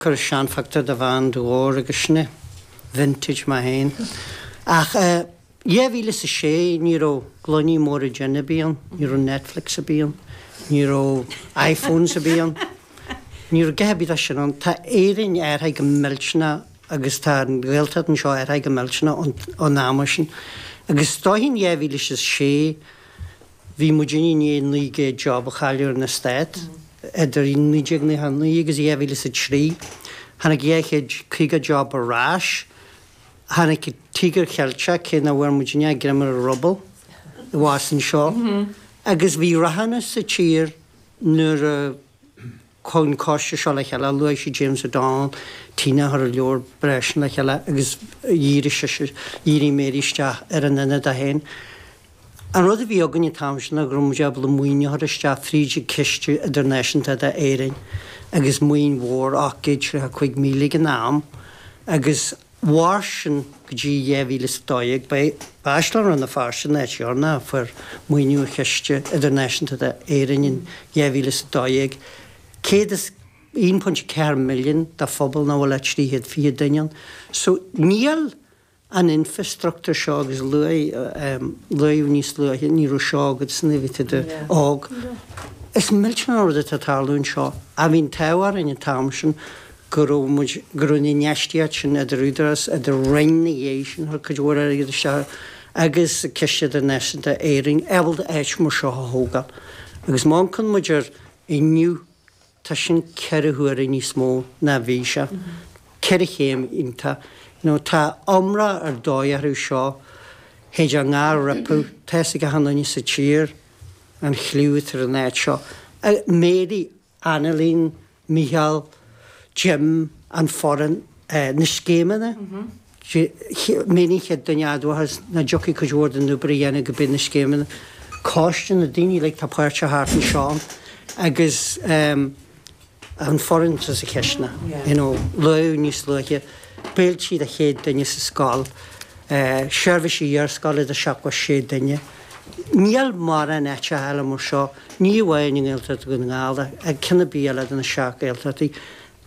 Cuir seanphictiúr de bhean de Dhobhar agus sine, vintage mé fhéin, ach i 2006 ní raibh gloiní móra jin ar bith ann, ní raibh Netflix ar bith ann, ní raibh iPhones ar bith ann, ní raibh a dhath ar bith de sin ann. Tá Éirinn athraithe go millteanach agus tá an Ghaeltacht anseo athraithe go millteanach ón am sin agus is dóigh in 2006, Bhí muid i ndiaidh 900 job a chailleadh ar an eastát idir 1999 agus 2003. Tháinig 250 job ar ais. Tháinig an Tíogar Ceilteach, cé nach bhfuair muid aon greim ar an ruball abhus anseo, agus bhí rathúnas sa tír nuair a. Chuaigh an coiste seo le chéile, luaigh sé James O'Donnell, Tina a chuir an leabhar breá sin le chéile agus dhírigh sise, dhírigh Mary isteach ar an Ionad é féin. An rud a bhí againn an t-am sin ná go raibh muid ábalta maoiniú a chur isteach fríd an Ciste Idirnáisiúnta d'Éirinn agus maoin mhór, 835,000 ag an am agus. mhair sin go dtí 2012. Ba é Áislann Rann na Feirste an áit dheireanach a fuair maoiniú ó Chiste Idirnáisiúnta d'Éirinn in 2012, £101.4 milliún do phobal nach bhfuil ach 320 duine ann. So níl an infreastruchtúr seo agus luaigh, luaigh níos luaithe, ní raibh seo agat nuair a bhí tú óg. Is millteanach an rud atá ag tarlú anseo. Bhí an t-ádh orainn an t-am sin go raibh muid, go raibh an infheistíocht sin idir údarás, idir Roinn ina dhiaidh sin, thug cuid mhór airgid isteach agus Ciste Idirnáisiúnta d'Éirinn ábalta áit mar seo a thógáil. Agus má amharcann muid air inniu, tá sin ceithre huaire níos mó ná a bhí sé. Ceithre chéim iontach. You know, tá iomrá ar dóigh orthu seo, théid a ngá roipeadh, tá fhios ag achan duine sa tír an chliú atá ar an áit seo. Mary Anailín, Micheál, Jim, an fhoireann, na scéimeanna, mé an chéad duine a admhós nach dtiocfadh cuid mhór den obair a dhéanamh go bé na scéimeanna, coiste na daoine uilig atá páirteach thart anseo agus an fhoireann sa sa chisteanach, you know, luadh níos luaithe, béilte do chéad duine sa scoil, seirbhís iarscoile do sheachtó is sé duine. Níl mórán áiteacha eile mar seo, ní amháin i nGaeltacht Dhún na nGall ach ceann ar bith eile de na seacht Ghaeltachtaí,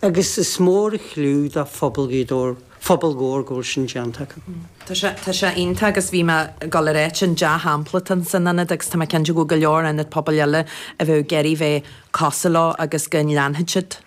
agus is mór an chliú do phobal Ghaoth Dobhair, phobal Dhobhair, go bhfuil sin déanta acu. Tá sé iontach agus bhí mé ag dul a ráit an dea-shampla atá ann san ionad agus tá mé cinnte go bhfuil go leor ionad pobail eile a bheadh ag iarraidh bheith cosúil leo agus go leanfaidh siad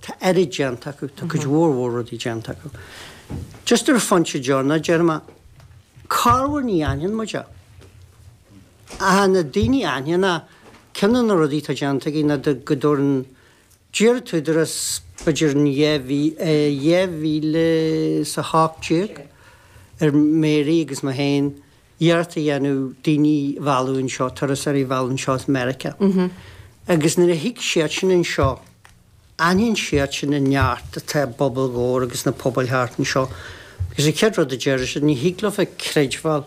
Tá an oiread déanta acu, tá cuid mhór mhór rudaí déanta acu. Just ar an phointe deireanach a déarfaidh mé, corruair ní aithníonn muid é. Ach na daoine a aithníonn é, ceann de na rudaí atá déanta aige ná go dtabharann d'iarr an tÚdarás b'fhéidir in 2018 ar Mary agus mé féin iarracht a dhéanamh daoine a mhealladh anseo, turasóirí a mhealladh anseo as Meiriceá. Agus nuair a thig siad sin anseo, aithníonn siad sin an neart atá i bpobal Dhobhair agus sna pobail thart anseo. Agus an chéad rud a déarfaidh siad, ní thig libh a chreidbheáil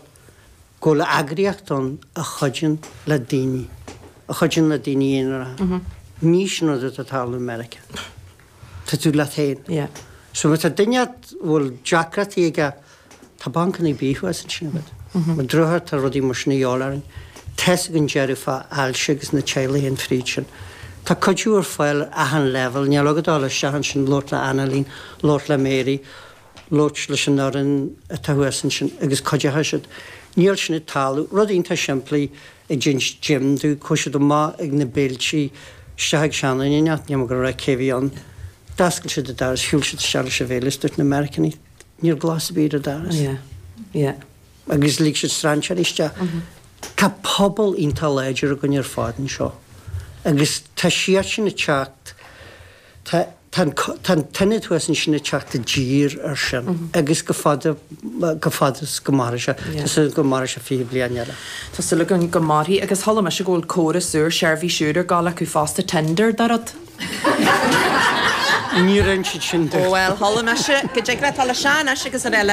go bhfuil eagraíocht ann a chuidíonn le daoine, a chuidíonn le daoine aonaracha. Ní sin rud atá ag tarlú i Meiriceá. Tá tú leat féin. Yeah. So má tá duine agat a bhfuil deacrachtaí aige, tá bancannaí bídh thuas ansin agat. Ar an drochuair, tá rudaí mar sin a dhíobháil orainn. Tá's againn deireadh fá ailse agus na teaghlaigh a théann thríd sin. Tá cuidiú ar fáil ar achan leibhéal, níl agat ach a dhul isteach ansin, labhairt le Annalín, labhairt le Mary, labhairt leis an fhoireann atá thuas ansin agus cuideochaidh siad. Níl sin ag tarlú. Rud iontach simplí. ag déanamh deimhin de chuaigh siad amach ag na béiltí isteach ag seanduine inteacht, níl mé ag dul a rá cé a bhí ann. D'fhoscail siad an doras, shiúil siad isteach leis an bhéile is dúirt na Meiriceánaigh Ní raibh glas ar bith ar an doras. Agus lig siad strainséirí isteach. Tá pobal iontach láidir againn ar fad anseo agus tá siad sin ag teacht, Tá an t-ionad thuas ansin ag teacht i dtír air sin agus go fada, go fada is go mairfidh sé. Tá súil agam go mairfidh sé fiche bliain eile. Tá súil againn go mairfidh agus chuala mise go bhfuil córas úr seirbhís úr ag gabháil acu fosta, Tinder, dá raibh. Ní raibh siad sin, duit. Ó bhuel, chuala mise go dtig le, tá le Seán, Ais srl.